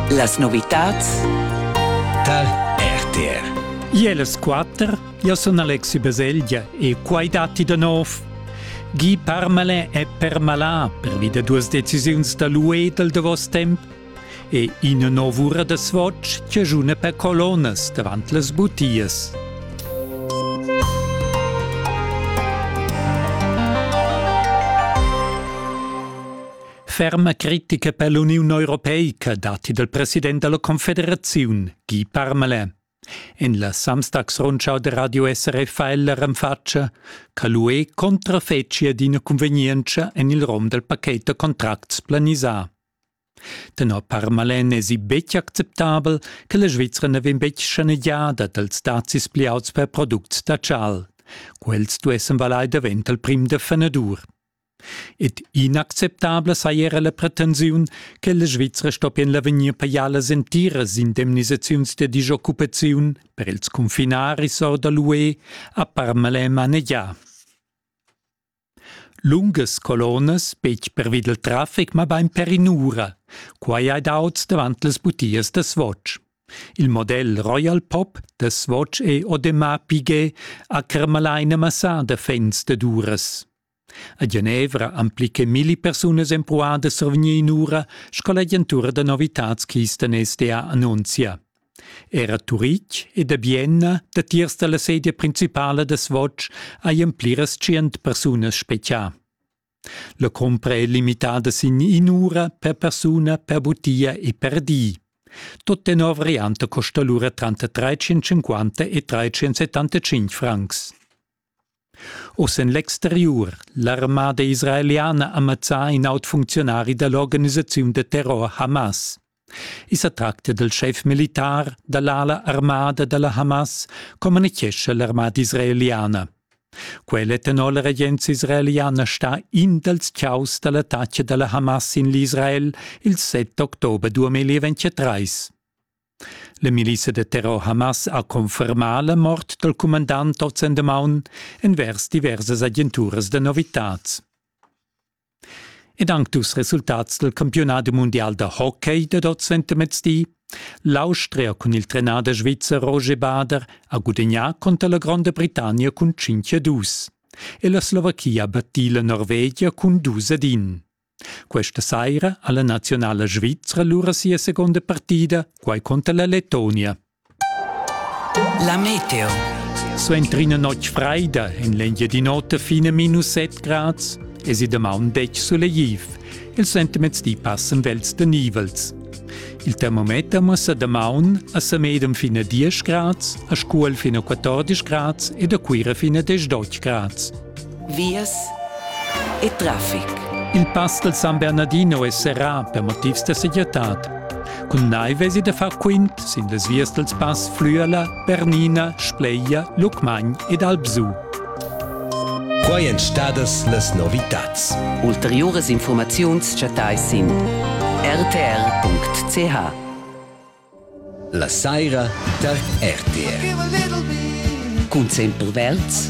Las novitads tar RTR. Iel es quatter, io sun Alexi Baselgia e quai datti da nov. Guy Parmalin è permalà pervi da duas decisiuns da l'UE dal davos temp e ina nov'ura da swatch chiajuna per colonas davant las butias. Ferma critica per l'Uniun europeica datti dal president della Confederaziun, Guy Parmelin. En la Samstagsrundschau de Radio SRF ha ella renfatscha che l'UE contrafetschia d'ina convenienza en il rom del paquet de contracts planisà. Tenor Parmalen è si betg acceptabel che la Svizzera ne vegn betg schanegiada dals dazis pliauts per products da chal. Quels duessen valai davent al prim de fenadur. Ed inacceptabla saja era la pretensiun che la Svizra stoppien l'avegnir pajar las entiras indemnisaziuns da disoccupaziun per ils confinaris or da l'UE a Parmalais manegià. Lungas colonas, betg pervi dal traffic, mabain per in'ura. Quai hai daut davant las butias da Swatch. Il model Royal Pop da Swatch e Audemars Piguet ha carmalà ina massada fans dad uras. A Genevra han pli che milli persunas empruadas survgni in'ura sco l'agentura da novitads Kisten SDA annunzia. Era a Turitg ed a Bienna, datiers dalla sedia principala da Swatch, hajan pliras tschient persunas spechià. La cumpra è limitada sin in'ura per persuna, per butia e per di. Tut tenor variante costa lura tranter 350 e 375 francs. Oz en l'exteriur. L'armada israeliana ha mazzà in aut funcziunari da l'organisaziun da terror Hamas. I sa tracta dal schef militar da l'ala armada da la Hamas, communitgescha l'armada israeliana. Quell'etanol regenza israeliana sta in dals chaos da l'attacca da la Hamas sin l'Israel il 7 october 2023. La milissa da terror Hamas ha confermà la mort dal cumandant oz-endamaun envers diversas agenturas da novitads. Ed anc dus resultats dal campiunat mundial da hockey dad oz entamezdi. L'Austria cun il trenader svizzer Roger Bader ha gudagnà conter la Gronda Britannia cun 5-2 e la Slovachia battì la Norvegia cun 2-1. Questa saira ha la nazionala svizra lura sia seconda partida, quai contra la Letonia. La meteo. Suenter ina notg freida en l'Engiadin'Ota fine minus 7 grads es i damaun detg sulegtiv. Il sentiments di passen vels de nivels. Il termometer muossa damaun a Samedem fine 10 grads, a Scuol fine 14 grads ed a Cuira fine 10 grads. vias e traffic. Il pass del San Bernardino è serrà per motivs da segirtad. Cun nai vesi da far quint sin las vias dels pass Flüerla, Bernina, Spleia, Lucmagn ed Albsu. Quai èn stadas las novitads. Ulteriuras informaziuns chattais sin rtr.ch. La saira tar RTR. Cun Sempel Welz